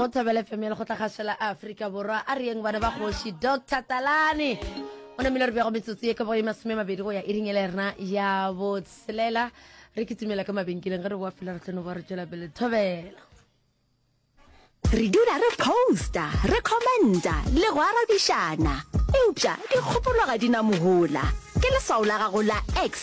go thobela fm ya lekgotla kgašo la aforika borwa a reyeng bana ba kgoši dr talane o namile re bjago metsotso ye ka boye masome mabedi go ya e ringele rena ya botshelela re ke tumela ka mabenkeleng ge re boa fela re tlone boa re tšwela pele thobela re dula re posta re commenta le go arabišana eupša dikgopolo ga di na mohola ke leswao la gago la x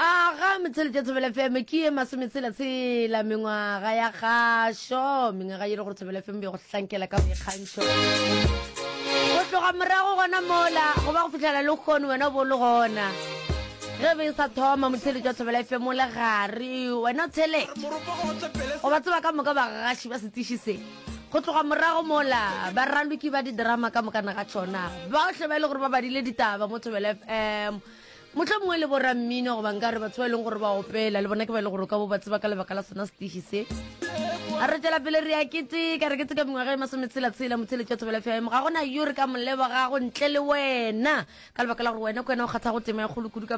A ga Motšheletša Thobela FM ke ye masometshela tshela mengwaga ya kgašo, mengwaga ye le gore Thobela FM ya go hlankela ka boikgantšho. Go tloga morago gona mola go ba go fitlhela le kgono wena o bo le gona ge be e sa thoma Motšheletša Thobela FM o le gare wena o tshele go ba tseba ka moka bagaši ba setiši se go tloga morago mola ba raloki ba di-drama ka mokana ga tšona baohle ba e le gore ba badile ditaba mo Thobela FM Mohlomongwe le borammino goba nka re batho ba e leng gore ba opela le bona ke ba e le gore o ka bo ba tseba ka lebaka la sona setiši se a re tšwela pele re a keteka re keteka mengwaga e masometshela-tshela motheletši wa thobela fm ga gona yo re ka molebogago ntle le wena ka lebaka la gore wena ke wena o kgathago tema ya kgolo kudu ka